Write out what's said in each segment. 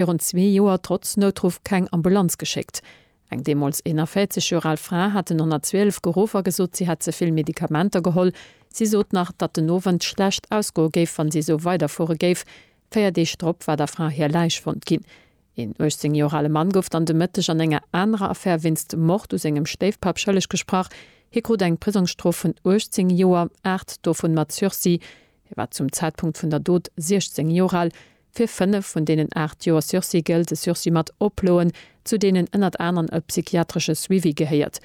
virun zwee Joer trotz Noutruff keng Ambulanz geschéckt. Eng deemools 41 Joer al Fra hat den 112 geruff a gesot, si hätt ze vill Medikamenter geholl. Si sot nach, datt den Owend schlecht ausgoe géif, wann si esou weiderfuere géif. Véier Deeg drop war der Fra hir Läich fonnt ginn. Een 18 Joer ale Mann gouf dann de Mëtteg an enger anerer Affär wéinst Mord u sengem Stéifpapp schëlleg gesprach. Hie krut eng Prisongsstrof vun 18 Joer, aacht dovun mat Sursis. Hie war zum Zäitpunkt vun der Dot 16 Joer al. Fir fënnef vun deenen aacht Joer Sursis gëllt e Sursis mat Oploen, zu deenen ënnert aneren e psychiatresche Suivi gehéiert.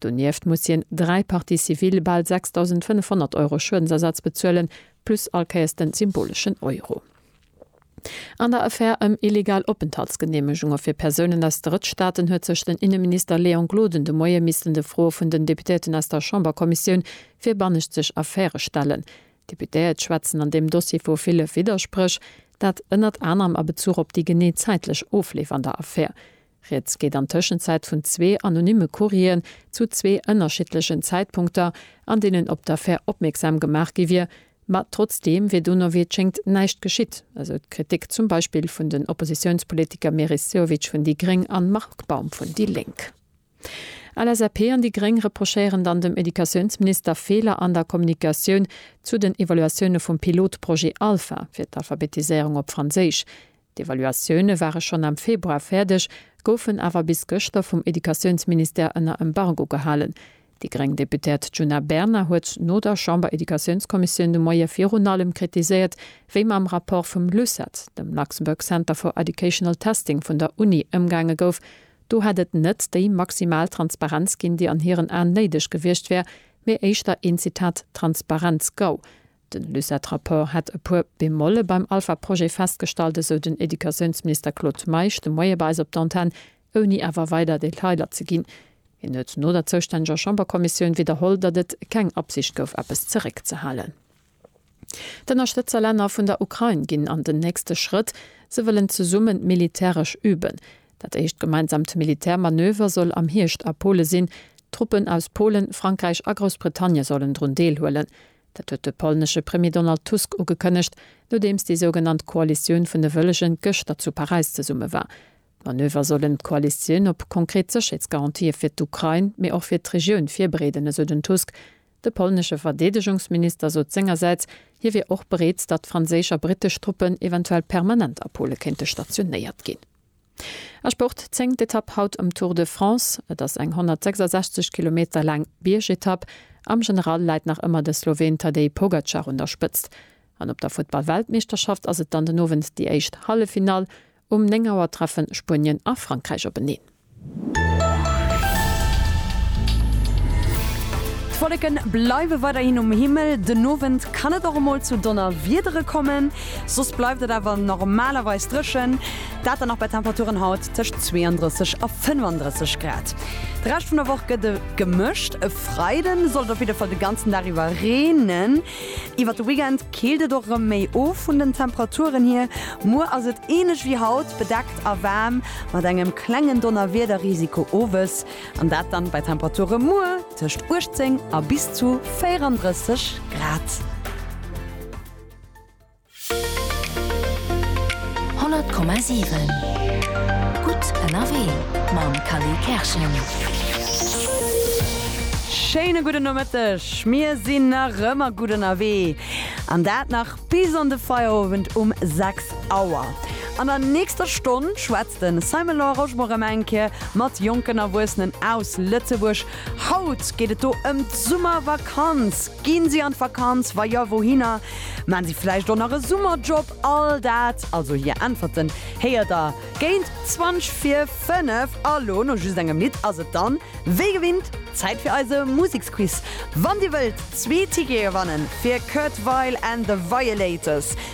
Donieft muss hien dräi Parties civiles, bal 6.500 Euro Schuedensersatz bezuelen, plus all Kéiers de symboleschen Euro. An der Affär ëm illegal Openthaltsgeneemegunge fir Persounen aus Drëttstaaten huet sech den Inneminister Léon Gloden de Moie missten de Froe vun den Deputéierten aus der Chamberkommissioun fir bannenzeg Affäre stellen. D'Deputéiert schwätzen an deem Dossier vu ville Widderspréch, dat ënnert anerem a Bezuch op déi genee zäitlech Ofleef an der Affär. Rieds geet an Tëschenzäit vun zwee anonymme Courrieren zu zwee ënnerschiddlechen Zäitpunkter, an deenen op d'Affär opmierksam gemaach gi wier, ma trotzdeem wier dono wéi et schéngt näischt geschitt, esou d'Kritik zum Beispill vun den Oppositiounspolitiker Meris Sehovic vun déi gréng an Marc Baum vun déi lénk. LSAP an déi Gréng reprochéieren dann dem Educatiounsminister Feeler an der Kommunikatioun zu den Evaluatioune vum Pilotprojet Alpha fir d'Alphabetiséierung op Franséisch. D'Evaluatioune ware schonn am Februar fäerdeg, goufen awer bis gëschter vum Educatiounsministère ënner Embargo gehalen. Déi gréng Deputéiert Djuna Bernard huet no der Chamber-Educatiounskommissioun de Moie virun allem kritiséiert, wéi mam Rapport vum LUCET, dem Luxembourg Center for Educational Testing vun der Uni, ëmgaange gouf, Do hätt et net déi maximal Transparenz ginn, déi an hiren Aen néideg gewiescht wär, mee éischter een, Zitat, Transparenz-Gau. Den LUCET-Rapport hätt e puer Bemolle beim Alpha-Projet festgestallt, esou den Educatiounsminister Claude Meisch de Moie bei eis op d'Antenn, ouni awer weider Detailer ze ginn. Hien huet no der zoustänneger Chamberkommissioun widderholl, datt et keng Absicht gouf, eppes zeréckzehalen. D'Ënnerstëtzerlänner vun der Ukrain ginn an den nächste Schrëtt, se wëllen zesummen militäresch üben. Dat éischt gemeinsamt Militärmanöver soll am Hierscht a Pole sinn. Truppen aus Polen, Frankräich a Groussbritannie sollen drun deelhuelen. Dat huet de polnesche Premier Donald Tusk ugekënnegt, nodeems déi sougenannt Koalitioun vun de Wëllegen gëschter zu Paräis zesumme war. D'Manöver sollen d'Koalitioun op konkret Sécherheetsgarantië fir d'Ukrain, mee och fir d'Regioun virbereeden, esou den Tusk. De polnesche Verdeedegungsminister sot sengersäits, hie wier och bereet, datt franséisch a brittesch Truppen eventuell permanent a Pole kéinte stationéiert ginn. A Sport, Zéngt Etapp haut um Tour de France. Et ass eng 166 Kilometer laang Biergetapp. Am General läit nach ëmmer de Sloween Tadej Pogacar un der Spëtzt. An op der Futtball-Weltmeeschterschaft ass et dann den Owend déi éischt Halleffinall. Um 9 Auer treffen Spuenien a Frankräich openeen. D'Wolleken bleiwen weiderhin um Himmel. Den Owend kann et och emol zu Donnerwiedere kommen, soss bleift et awer normalerweis drëchen. Dat dann och bei Temperaturen haut tëscht 32 a 35 Grad. De Rescht vun der Woch gëtt e gemëscht, e Freiden soll et op jidde Fall de ganzen Dag iwwer reenen. Iwwert de Weekend keelt et och erëm méi of vun den Temperaturen hier. Muer ass et ähnlech wéi haut, bedeckt a waarm mat engem klengen Donnerwiederrisiko owes, an dat dann bei Temperature muer tëscht 18 a bis zu 34 Grad. 100,7 Gutt ënnerwee mam Kally Kerschen. Schéine gudden Nomëtteg. Mir sinn nach ëmmer gutt ënnerwee an dat nach bis an de Feierowend um 6 Auer. An der nächster Stonn schwätzt de Simon Law Rochemore erëm eng Kéier mat jonken Erwuessenen aus Lëtzebuerg Haut geet et do ëm d'Summervakanz. Gi si an d'Vakanz? Wa jo, wouhinner? Maan si vläicht och nach e Summerjob? All dat, also hir Äntwerten, héiert der géint 20 vir 5. A lo, no just engem Lidd, ass et dann wéi gewinnt Zäit fir eise Museksquiz. Wann dir wëllt zwee Tickete gewannen fir Kurt Weill and the Violators,